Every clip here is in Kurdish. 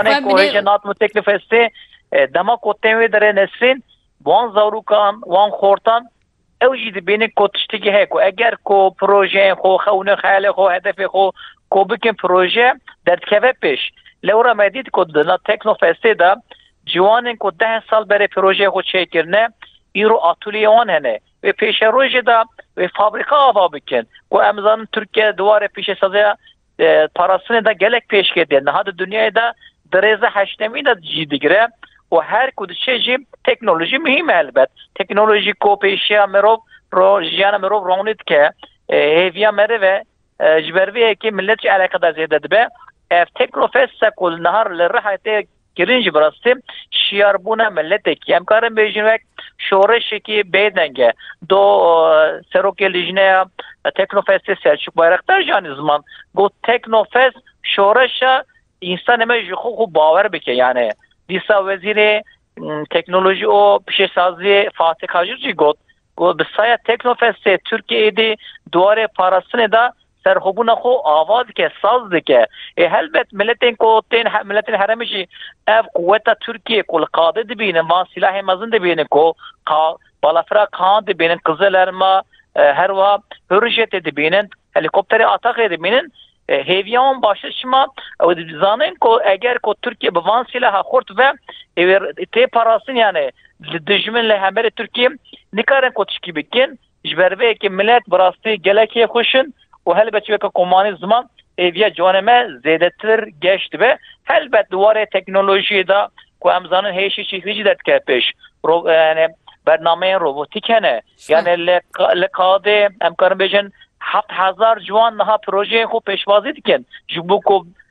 Xwe Ko hêjê nat min teklif hestê dema ko tên wê derê Nesrîn wan zarûkan wan xortan ew jî dibînin ko tiştekî heye ku eger ko projeyên xwe xewnin xeyalê xwe hedefê xwe ko bikin proje derdikeve pêş. Lewra me dît ku di na teknofestê de ciwanên ku deh sal berê projeyê xwe çêkirine îro atûliyê wan hene. Wê pêşerojê de wê fabrîka ava bikin ku em zanin Tirkiye di warê pêşesaziya Di parastinê de gelek pêşkê tê. Niha di dinyayê de di rêza heştemîn de cî digire û her ku diçe jî teknolojî muhîm e elbet. Teknolojî ku pêşiya mirov ro jiyana mirov ronî dike hêviya meriv e. Ji ber vê yekê milet jî eleqedar zêde dibe. Ev Teknofest se ku niha li Rihayê tê Gelin jî bi rastî şiyarbûna miletekî em karin bêjin wek şoreşekî bêdeng e. Do serokê lijneya Teknofestê Selçuk Bayraktar jî anî ziman got Teknofest şoreşa însanê me ji xwe xwe bawer bike yanê. Dîsa wezîrê teknolojî û pişesaziyê Fatih Kajik jî got got bi saya Teknofestê Tirkiyeyê dê di warê parastinê de serxwebûna xwe ava dike, saz dike. Ê helbet miletên ku tên miletên herêmê jî ev quweta Tirkiyê ku li qadê dibînin van sîlahên mezin dibînin ku balafira Kaan dibînin, Kizilelma her wiha Hurrijetê dibînin, helîkopterê Ataqê dibînin hêviya wan baştir çima ew dizanin ku eger ku Tirkiye bi van sîlaha xurt ve ê wê tê parastin yanê li dijmin li hemberê Tirkiyê nikarin ku tişkî bikin Ji ber vê yekê milet bi rastî gelek yê xweş in û helbet çivka komanî ziman hêviya ciwanê me zêdetir geş dibe. Helbet di warê teknolojiyê de ku em zanin hêşî çîxî jî derdikeve pêş. Ro yani bernameyên robotîk hene. Yani li li kadê em karin bêjin heft hezar ciwan niha projeyên xwe pêşwazî dikin ji bo ku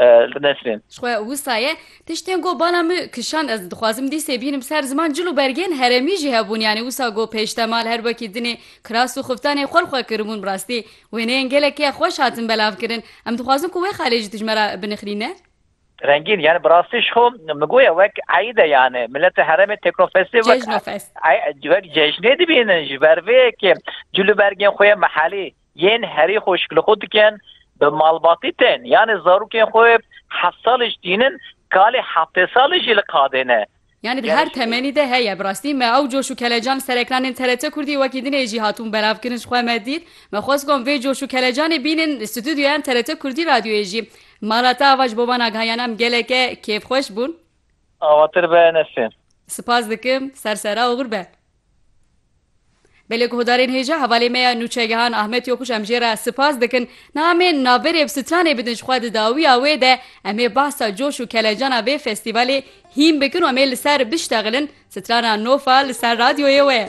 Li Nesrên. Xwe wisa ye. Tiştên ku bala min kişand ez dixwazim dîsê bînim ser ziman cil û bergên herêmî jî hebûn yanî wisa ku pêştemal her wekî dinê kiras û xiftanê xwe li xwe kiribûn bi rastî wêneyên gelekî ye xweş hatin belavkirin em dixwazin ku wê xalê jî dijmera binixilîne. Rengîn, yanî bi rastî ji xwe min goya wek eîd e yanî mileta herêmê Teknofestê wek Cejnofest. wek cejnê dibînin ji ber vê yekê cil û bergên xwe yên mehallî Yên herî xweşik li xwe dikin, bi malbatî tên, yanê zarokên xwe heft salî ji tînin, kalê heftê salî jî li qadê ne. Yanê di her temenî de heye. Bi rastî me ew coş û kelecan li ser ekranên TRT Kurdî wekî dinê jî hatibûn belavkirin ji xwe me dît. Me xwest got vê coş û kelecanê bînin li stûdyoyan TRT Kurdî radyoyê jî. Mala te ava ji bo van agahiyana em geleke kêfxweş bûn. Avatir be Nesrîn. Sipas dikim. Ser sera oxir be. Belê guhdarên hêja hevalê me ya Nûçegihan Ahmet Yokuş em jê re sipas dikin. Niha em ê navberê bi stranê bidin ji xwe di dawiya wê de em ê behsa coş û kelecana vê festîvalê hîn bikin û em ê li ser biştexilin. Strana Nofa li ser radyoyê we ye.